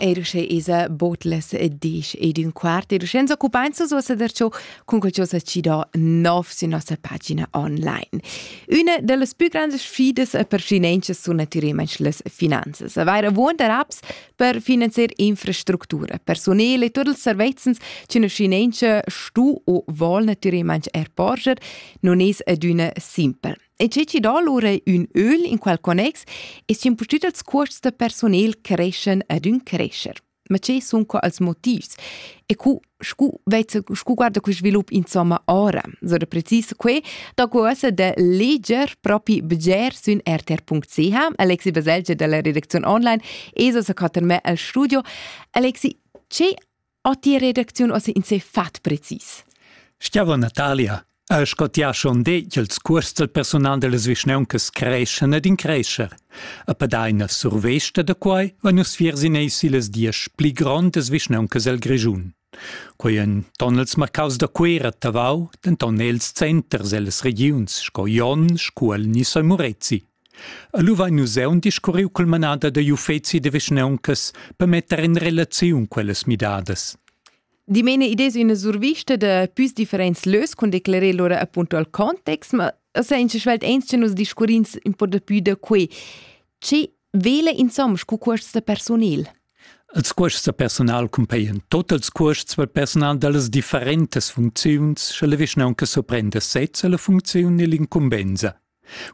Eir sche esa botlas disch ed ün quart ed senza occupainza so seder ciò cun quel sa ci do nov su nossa pagina online. Üna da las pü grandas sfidas per finanzas sun natüralmaing las finanzas. Avair avuonda apps per finanzier infrastructura, personel e tuot ils servezzans ch'üna finanza stu o vol natüralmaing er porscher non es adüna simpel. E tge chi do lura ün öl in quel connex es impustüt als cuosts da personel creschan ed ün crescher. Ma che sun qua als motivs? E cu, scu, scu guarda quel svilup insomma ora? So da precis que, da cuosa de leger propi bger sün rtr.ch. Alexi Baselgia dalla redazione online, eso sa cattar me al studio. Alexi, che Atti redacziun ossa in se fat precis. Stiava Natalia, al sco ti ha schon detg, ils curs del personal dellas vischneuncas creschen ed in crescher. A padaina survesta da quai va nus fiers in ei silas diesch pli grondas vischneuncas el Grischun. Quei en ton els marcaus da Cuera Tavau, denton els centers ellas regiuns sco Jon, Scuol ni San Murezi. Lu vein nus aunc discurriu cul manader digl uffeci da vischnauncas per metter in relaziun quellas midadas. Dimena id es üna survista da püs differents lös cun declerer lura appunto al context, ma senza svelt ens che nus discurrins un po da pü da quei. Che vela insomma cu cuosts da personel? Els cuosts da personal cumpaien tot els cuosts per personal dallas differentas funcziuns, sche la vischnaunca surprenda sez alla funcziun e l'incumbenza.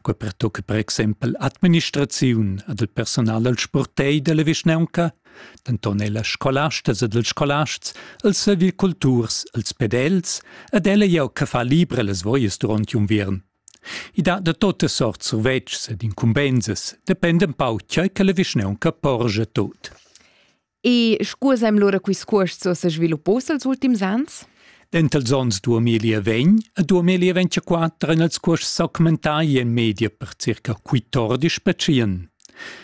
Quei pertucca per exempel administraziun ed il personal dal spurtei dalla vischnaunca, denton ella scolastas ed ils scolasts, els serviculturs, els pedels ed ella jeu che fa libra las voias duront unviern. I dat da totas sorts survetschs ed incumbensas, dependa empau tgei che la vischnaunca porgia tot. E scusaem lura quist cuost so se sviluppos els ultims ans? Dentals ons 2020 e 2024 han els cuosts augmentà in media per circa 14 percient.